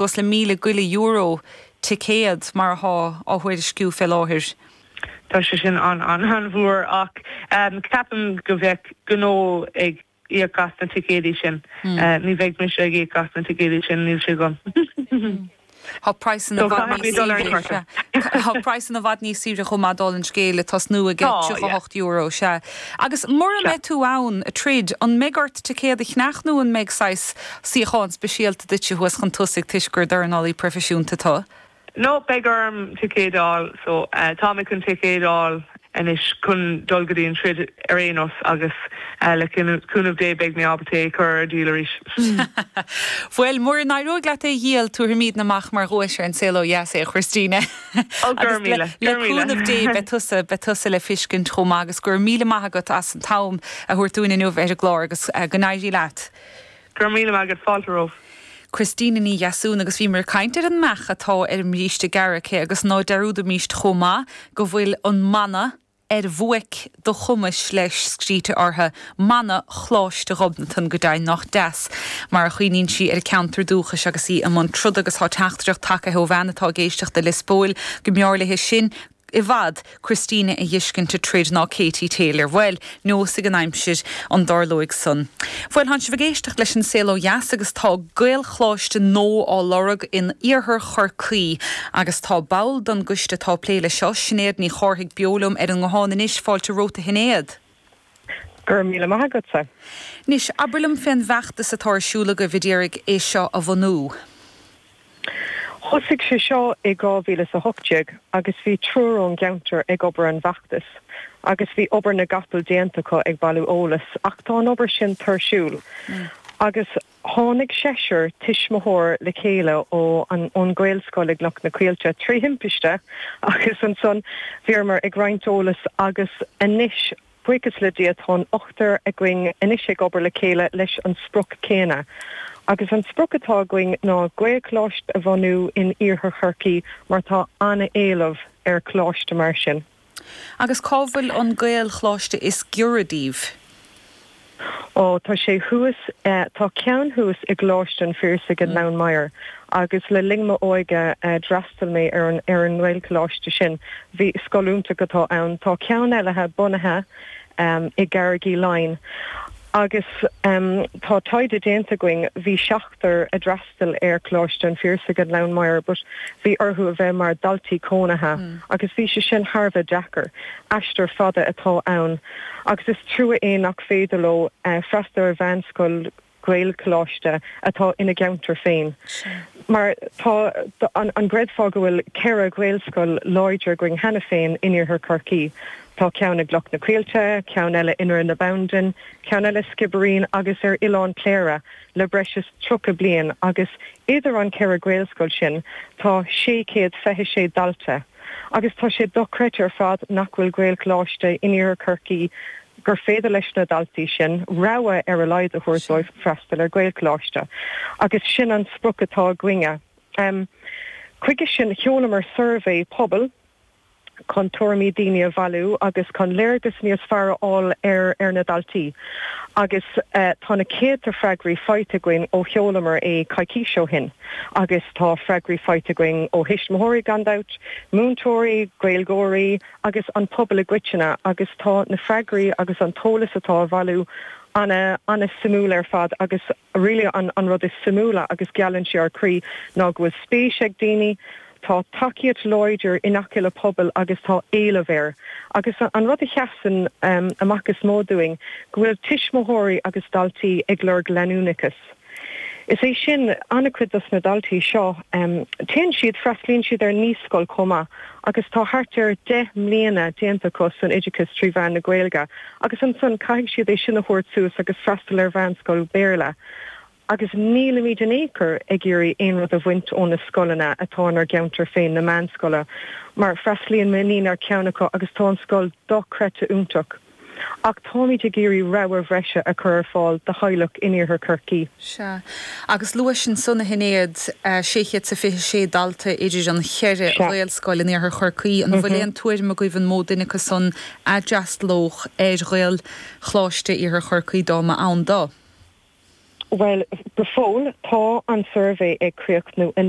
Suas le míle go leith euro ticéad, mar athá á thuairisciú fé láthair. Tá sé sin an-an-an-mhór, ach ceapaim go mbeidh gnó ag íoc as na ticéadaí sin. Ní bheidh mise ag íoc as na ticéadaí sin, níl sé agam. Tá praghsanna i bhfad níos saoire. Tá praghsanna i bhfad níos saoire chomh maith, dála an scéil, le tosnú ag €38, sea. Agus mura mbeidh tú ann ag troid, an mbeidh ort ticéad a cheannach nó an mbeidh saghas Suíochán speisialta duitse thuas chun tosaigh toisc gur dornálaí proifisiúnta tú. No, beidh orm ticéid a fháil. So, tá mé chun ticéid a fháil anois chun dul go dtí an troid ar aon nós agus le cúnamh Dé beidh mé ábalta é a chur ar díol arís. Bhuel, mura n-éireoidh leat é a dhíol, tabharfaimídne amach mar dhuais ar an Saol Ó Dheas é, a Christina. Ó, go raibh míle, go raibh míle. Agus le cúnamh Dé beidh tusa, beidh tusa le feiscint chomh maith. Agus go raibh míle maith agat as an t-am a thabhairt dúinn inniu a bheith ar an gclár agus go n-éirí leat. Go raibh míle maith agat, fáilte romhaibh. Christina Ní Dheasúna agus bhíomar ag caint ar an mbeach atá ar an mbríste gearr aici agus ná dearúdaimíst chomh maith go bhfuil an mana 'Ar bhuaic do chumais' leis scríte orthu, mana Choláiste Ghobnatan, go deimhin. Nách deas mar a chuimhníonn sí ar a ceantar dúchais agus í i mbun troda agus tá teachtaireacht tacaithe ó bhean atá ag éisteacht i Lios Póil go mb'fhearr léi sin go i bhfad, Christina a dh'fheiscint ag troid ná Katie Taylor. Bhuel, neosfaidh an aimsir an dtarlóidh san. Bhuel, tánn sibh ag éisteacht leis An Saol Ó Dheas agus tá Gaelcholáiste nua á lorg in Iarthar Chorcaí. Agus tá ball don gcoiste atá ag plé leis seo, Sinéad Ní Chárthaigh beo liom ar an nguthán anois, fáilte romhat a Shinéad. Go raibh míle maith agatsa. Anois, abair liom fén bhfeachtas atá ar siúl agaibh a d'iarraidh é seo a bhunú. Thosaigh sé seo i 2018 agus bhí triúr ón gceantar ag obair ar an bhfeachtas agus bhí obair na gcapall déanta acu ag bailiú eolas ach tá an obair sin tuirsiúil agus Tháinig seisear tuismitheoir le chéile ó ón Ghaelscoil i gCloich na Coillte trí thimpiste agus ansan bhíomar ag roinnt eolas agus anois buíochas le Dia tá an ochtar againn anois ag obair le chéile leis an sprioc céanna agus an sprioc atá againn ná Gaelcholáiste a bhunú in Iarthar Chorcaí mar tá an-éileamh ar choláiste mar sin. Agus cá bhfuil an Gaelcholáiste is giorra daoibh? Ó, tá sé thuas, tá ceann thuas i gColáiste an Phiarsaigh i nGleann Maghair agus le linn m'óige d'fhreastail mé ar an nGaelcholáiste sin, bhí, scoil iontach atá ann. Tá ceann eile bunaithe i gCarraig Uí Leighin agus tá taighde déanta againn, bhí seachtar a d'fhreastail, freastal ar Coláiste an Phiarsaigh i nGleann Maghair but bhí orthu a bheith mar daltaí cónaithe agus bhí sé sin thar a bheith deacair. Aistear fada atá ann agus is trua é nach féidir leo freastal ar mheánscoil Ghaelcholáiste atá ina gceantar féin mar tá an gcreidfeá go bhfuil ceithre Ghaelscoil láidre againn cheana féin in Iarthar Chorcaí. Tá ceann i gCloch na Coillte, ceann eile i nDroichead na Bandan, ceann eile i Sciobairín agus ar Oileán Chléire. le breis is 30 bliain agus idir na ceithre Ghaelscoil sin tá 626 dalta agus tá sé dochreidte ar fad nach bhfuil Gaelcholáiste in Iarthar Chorcaí gur féidir leis na daltaí sin rogha ar a laghad a thabhairt dóibh freastal ar Ghaelcholáiste agus sin an sprioc atá againne. Chuige sin sheolamar suirbhé pobail. chun tuairimí daoine a bhailiú agus chun léargas níos fearr a fháil ar ar na daltaí agus tá na céadta freagraí faighte againn ó sheolamar é coicís ó shin agus tá freagraí faighte againn ó thuismitheoirí gan dabht, múinteoirí, Gaeilgeoirí agus an pobal i gcoitinne agus tá na freagraí agus an t-eolas atá á bhailiú ana, ana-suimiúil ar fad agus. really an rud is suimiúla agus gealann sé ár gcroí ná go bhfuil spéis ag daoine, tá tacaíocht láidir i ngach uile phobal agus tá éileamh air. Agus an rud a sheasann amach is mó dúinn go bhfuil tuismitheoirí agus daltaí ag lorg leanúnachais. Is é sin, an-chuid dos na daltaí seo, téann siad, freastlaíonn siad ar naíscoil chomh maith agus tá thart ar deich mbliana déanta acu san oideachas trí mheán na Gaeilge, agus ansan caithfidh siad é sin a thabhairt suas agus freastal ar mheánscoil Béarla, agus nílimid in aon chor ag iarraidh aon rud a bhaint ó na scoileanna atá inár gceantar féin, na meánscoile, mar freastlaíonn m'iníon ar cheann acu agus tá an scoil dochreidte iontach, ach táimid ag iarraidh rogha bhreise a chur ar fáil do theaghlaigh in Iarthar Chorcaí. Sea, agus luais ansan, a Shinéad, sé chéad is a fiche sé dalta idir an cheithre Ghaelscoil in Iarthar Chorcaí, an bhfuil aon tuairim agaibh an mó duine acu san a d'fhreastalódh ar Ghaelcholáiste in Iarthar Chorcaí dá mba ann do. Bhuel, go fóill, tá an suirbhé ag críochnú anocht.